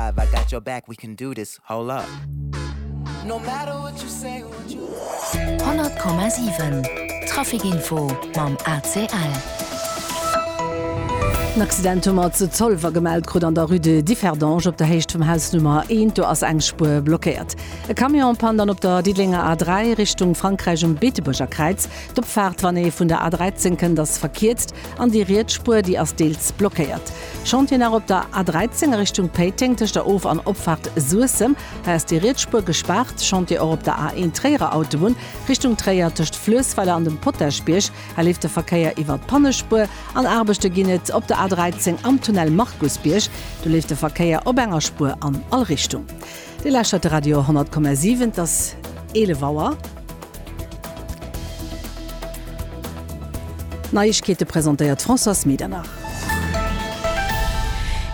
I've I got your back we can do this Hold up No matter what you say or what you do 100,7 Traficinfo mam ACL. En Accident hu mer zu Zolwer gemellt krut an der Rue de Differdange op der Héicht vum Haus Nummer 1. Do ass eng Spuer blockéiert. E Camion pannt an op der Diddelenger A3 Richtung Frankräich um Beetebuerger Kräiz. D'Opfaart, wann ee vun der A13 kënnt, ass verkierzt. An déi riets Spuer, déi ass deels blockéiert. Chantier nach op der A 13 a Richtung Péiteng tëscht der Of an Opfaart Suessem. Hei ass déi riets Spuer gespaart. Chantier och op der A 1 Tréierer Autobunn Richtung Tréier tëscht Fluessweiler an dem Potaschbierg. Hei leeft de Verkéier iwwert d'Pannespuer. An Aarbechte ginn et op der A 13 am Tunnel Markusbierg. Do leeft de Verkéier op enger Spuer an all Richtung. Dir lauschtert de Radio 10,7, et ass 11 Auer. D'Neiegkeete presentéiert d'Françoise Medernach.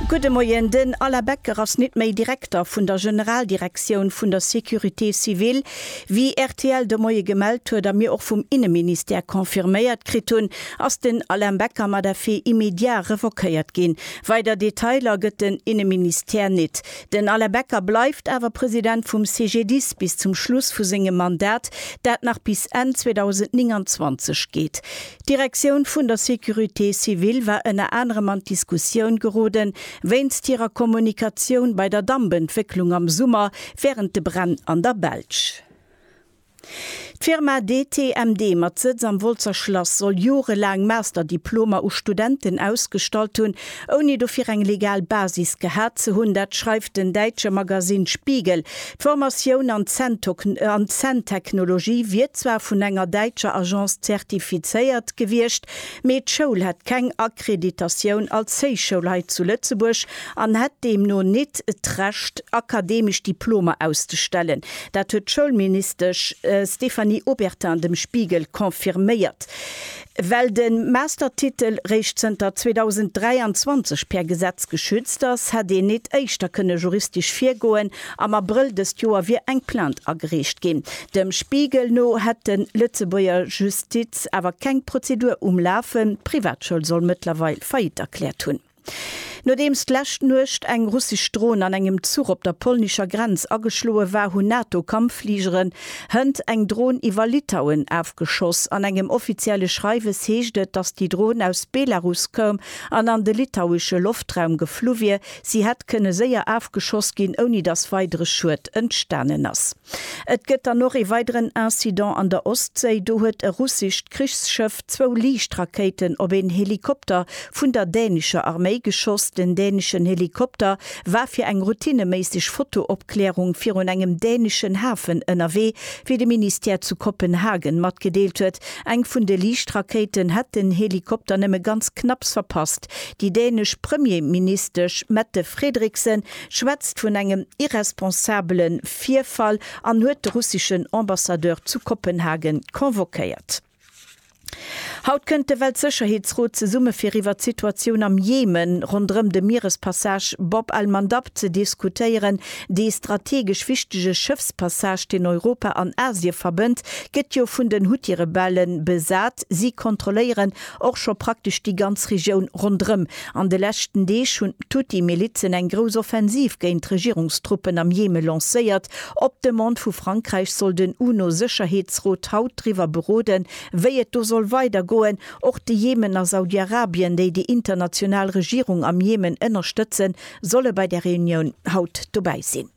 Gudde Moien, Den Alain Becker ass nit méi Direkter vun der Generaldirektioun vun der Sécurité civile. Wéi rtl de Moie gemellt huet a mir och vum Inneministère confirméiert kritt hunn, ass den Alain Becker mat effet immédiat revoquéiert ginn. Weider Detailer gëtt den Inneministère nit. Den Alain Becker bleift awer President vum CGDIS bis zum Schluss vu sengem Mandat, dat nach bis Enn 2029 geet. D'Direktioun vun der Sécurité civile war ënner anerem an d'Diskussioun gerode wéinst hirer Kommunikatioun bei der Dampentwécklung am Summer wärend de Bränn an der Belsch. D'Firma DTMD mat Sëtz am Wolzer Schlass soll jorelaang Master-Diplomer u Studenten ausgestallt hunn, ouni dofir eng legal Basis gehat ze hunn. Dat schreift den däitsche Magasinn Spiegel. D'Formatioun an d'Zänntechnologie wier zwar vun enger däitscher Agence zertifizéiert gewiescht, mee d'Schoul hätt keng Akkreditatioun als Héichschoul hei zu Lëtzebuerg an hätt deemno nit d'Recht, akademesch Diplomer auszestellen. Dat huet d'Schoulministesch Stéphanie Obertin dem Spiegel confirméiert. Well de Mastertitel réischt zënter 2023 per Gesetz geschützt ass, hätt een et éischter kënne juristesch virgoen. Am Abrëll dëst Joer wier eng Plainte agereecht ginn. Dem Spiegel no hätt de Lëtzebuerger Justiz awer keng Prozedur um Lafen. D'Privatschoul soll mëttlerweil Faillite erkläert hunn. Nodeems d'lescht Nuecht eng russesch Dron an engem Zuch op der polnischer Grenz ageschloe war, hunn NATO-Kampffligeren hënt eng Dron iwwer Litauen afgeschoss. An engem offizielle Schreiwes heescht et, datt déi Dron aus Belarus koum an an de litauesche Loftraum geflu wier. Si hätt kënne séier afgeschoss ginn, ouni datt weidere Schued entstanen ass. Et gëtt dann och ee weideren Incident an der Ostséi. Do huet e russescht Krichsschëff zwou Liichtrakéiten op een Helikopter vun der dänescher Arméi geschoss. Den däneschen Helikopter war fir eng routineméisseg Fotoopklärung virun engem däneschen Hafen ënnerwee, wéi de Ministère zu Kopenhagen matgedeelt huet. Eng vun de Liichtrakéiten hätt den Helikopter nëmme ganz knapps verpasst. Déi dänesch Premierministesch Mette Frederiksen schwätzt vun engem irresponsabele Virfall an huet de russeschen Ambassadeur zu Kopenhagen convoquéiert. Haut kënnt de Weltsécherheetsrot zesumme fir iwwer d'Situatioun am Jemen ronderëm de Mierespassage Bab al-Mandab ze diskutéieren. Dee strategesch wichtege Schëffspassage, deen Europa an Asie verbënnt, gëtt jo vun den Huthi-Rebelle besat. Si kontrolléieren Och scho praktesch déi ganz Regioun ronderëm. An de leschten Deeg hunn d'Huthi-Milizen eng grouss Offensiv géint d'Regierungstruppen am Jemen lancéiert. Op Demande vu Frankräich soll den UNO-Sécherheetsrot haut driwwer beroden, wéi et do soll weider goen. Och de Jemen a Saudi-Arabien, déi déi international Regierung am Jemen ënnerstëtzen, solle bei der Reunioun haut dobäi sinn.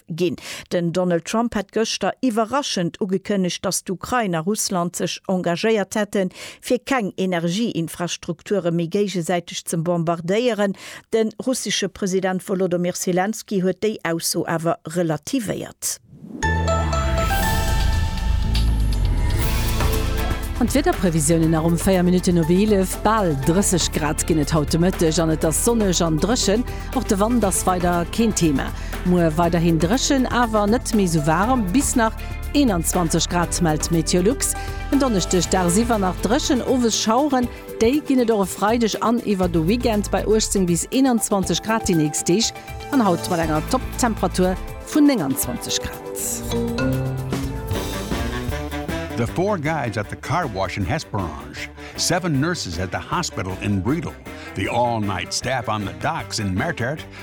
Ginn. Den Donald Trump hat gëschter iwwerraschend ugekënnegt, datt d'Ukrain a Russland sech engagéiert hätten, fir keng Energieinfrastrukture méi géigesäiteg ze bombardéieren. De russesche President Wolodomyr Selenskyj huet déi Ausso awer relativéiert. An d'Wiederprevisiounen, Nach um 4 Minutten op 11, bal 30 Grad ginn et haut de Mëtteg an et ass sonneg an dréchen. Och de Wand ass weider keen Thema. Muer weiderhin dréchen, awer net méi sou waarem, bis nach 21 Grad mellt Meteolux. En Donneschdeg dagsiwwer nach dréchen, owes Schaueren. Déi ginn et och e Freideg an iwwer de Weekend bei 18 bis 21 Grad déi nächst Deeg an haut mat enger Topptemperatur vun 29 Grad. The four guys at the car wash in Hesperange, seven nurses at the hospital in Bredal, the all-night staff on the docks in Mertert,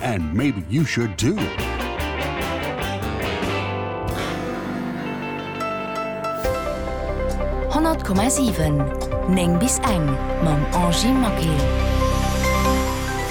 And maybe you should too! Honnert Komma siwen, néng bis eng, mam Angie Maquet.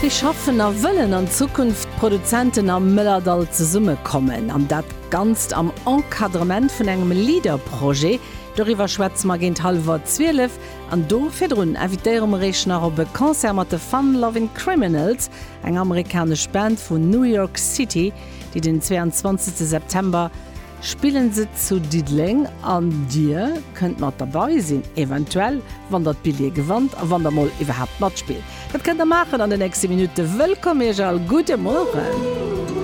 Wéi schaffen a wëllen an Zukunft d'Produzenten am Mëllerdall zesumme kommen? An dat Ganzt am Encadrement vun engem LEADER-Projet. Doriwwer schwätze mer géint hallwer zwielef. An do virdrun invitéiere mer Iech nach op e Concert mat de Fun Lovin' Criminals. Eng amerikanesch Band vun New York City déi den 22 September spillen se zu Diddeleng an dir kënnt mat derbei sinn eventuell wann der d'Billje gewannt a wann der mol iwwerhaapt matspillt. Dat kënnt der maachen an de nächste Minutte. Wëllkomm iech all, gudde Mueren.